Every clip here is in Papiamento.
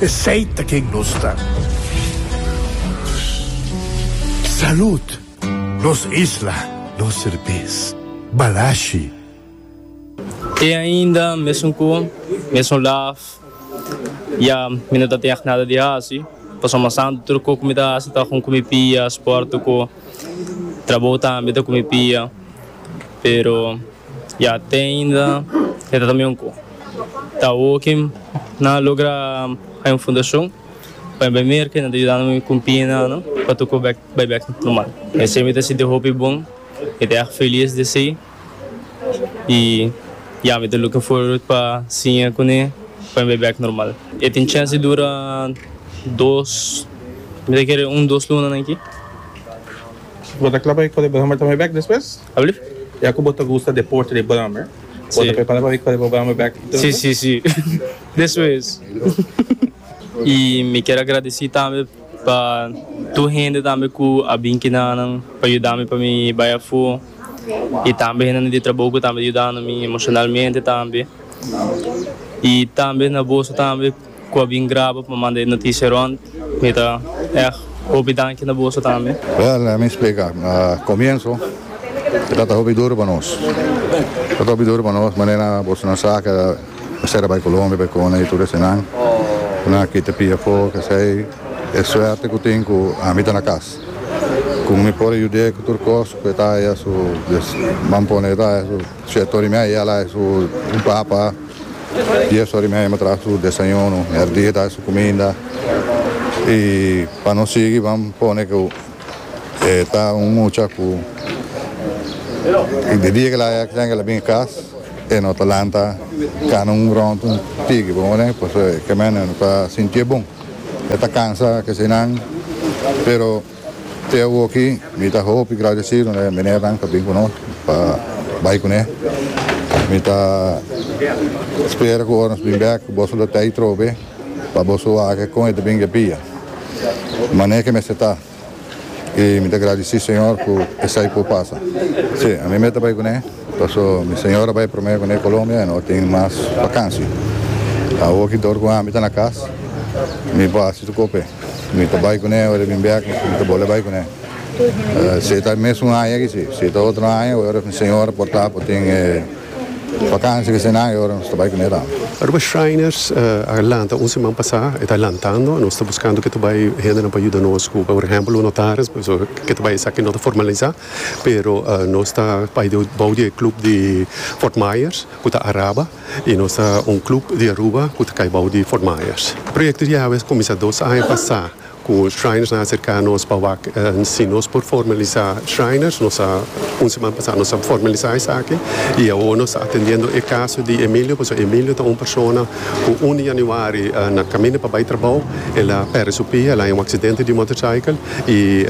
Esey ta ken nos ta. Salud! Nos isla, nos serbes. Balashi. Te ainda mesun cu mesun laf ya mi no ta teg nada di haci pasobra mas anto tur cu cu mi ta haci ta con cu mi pia sport cu trabou tambe ta cu mi pia pero. Ya te ainda e ta tambe un cu ta oki nan a logra hay un fundacion pa e bai merca y nan ta yudando mi cu pie nan no pa toco bek bai bek normal esey mi ta sinti hopi bon mi ta erg feliz di esey y ya mi ta looking forward pa siña cune pa mi bai bek normal e tin chance di dura dos mi ta kere un dos lunanan aki. Lo ta cla pa e colegio bo ta bai bek despues? Alsjeblieft. Ya cu bo ta gusta deporte de brommer, bo ta prepara pa bai core bo brommer bek y todo? Sí, sí, sí. Deso es. Y mi kier a gradeci tambe pa tur hende tambe cu a bin kina nan pa yuda mi pa mi bai afo y tambe hendenan di trabou cu tambe ta yudando mi emocionalmente tambe. Y tambe na boso tambe. Cu a bin graba pa manda e noticia rond. Mi ta echt hopi danki na boso tambe. Well, lemme me splica. Comienso e tabata hopi duro pa nos. E tabata hopi duro pa nos manera boso na sa cu a cera bay Colombia bay Cona y tur esenan. Nan a kita pia afo kesey. E suerte cu tin cu ami ta na cas. Cu mi por a yude cu tur cos cu e ta aya su, Dios, ban pone e ta aya su. Siete ora y media ala e su papa, dies ora y media bo traha su desayuno, merdía ta su cuminda y pa no sigui ban pone cu e ta un mucha cu de dia que laya tenga que la bini cas e no ta lanta cana un rond un tigi bo horen pasobra e caminda e no ta sinti e bon, e ta cansa, kese nan pero. Te awoki mi ta hopi gradecido na e menernan pa bin cu nos pa bay cune. Mi ta spera cu ora nos bin bek boso lo tey trobe pa boso wak con e ta bin gepia mane ke mester ta. Y mi ta gradeci Señor cu esai por pasa. Si, ami mester bay cune paso mi señora bay prome cune Colombia y no tin mas vakansi. Awoki dor cu ami ta na cas mi por haci su cope. Mi ta bai kuné ora bin bèk i mi ta bole bai kuné. Si e ta mes un aña aki si, si e ta otro aña ora mi señora por ta por tin e vakansia ki eseinan e ora nos ta bai kuné tambe. Aruba Shriners a lanta un siman pasá, e ta lantando, nos ta buskando ke ta bai hendenan pa yuda nos ku por ehèmpel un notaris pasobra ke ta bai esaki no ta formalisá pero nos ta bai bou di e klup di Fort Myers ku ta Araba. I nos ta un club di Aruba cu ta cay bao di Fort Myers. Proyecto di awe a cuminsa dos aña pasa cu Shriners a acerca nos pa wak si nos por formalisa Shriners. Nos a, un siman pasa nos a formalisa esaki y awor nos ta atendiendo e caso di Emilio pasobra Emilio ta un persona cu un di Januari na caminda pa bay trabao el a perde su pia, el a haña un accidente di motorcycle y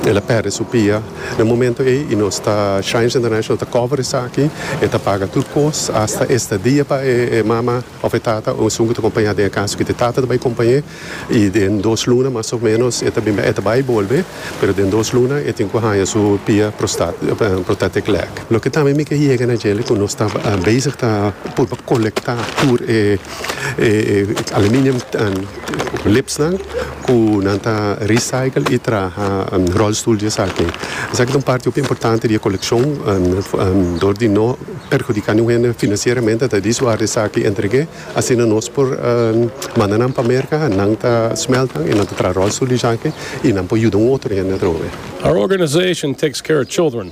el a perde su pia. Na momento ey y nos ta Shines International ta cover esaki, e ta paga tur cos, hasta estadia pa e mama of e tata o esun cu ta compaña den e caso cu ta e tata ta bay compañe y den dos luna mas of menos e ta bin bay, e ta bay y bolbe, pero den dos luna e tin cu haya su pia prostatic leg. Loke tambe mi ke yega na djele cu nos ta bezig ta purba colecta tur e aluminium. liftsnan cu nan ta recycle y traha rolstoel di esaki. Esaki ta un parti hopi importante di e coleccion dor di no perhudica niun hende financieramente ta di su ar di esaki entregue asina nos por manda nan pa Merca nan ta smeltnan y nan ta traha rolstoel di esaki y nan por yuda un otro hende atrobe. Our organization takes care of children.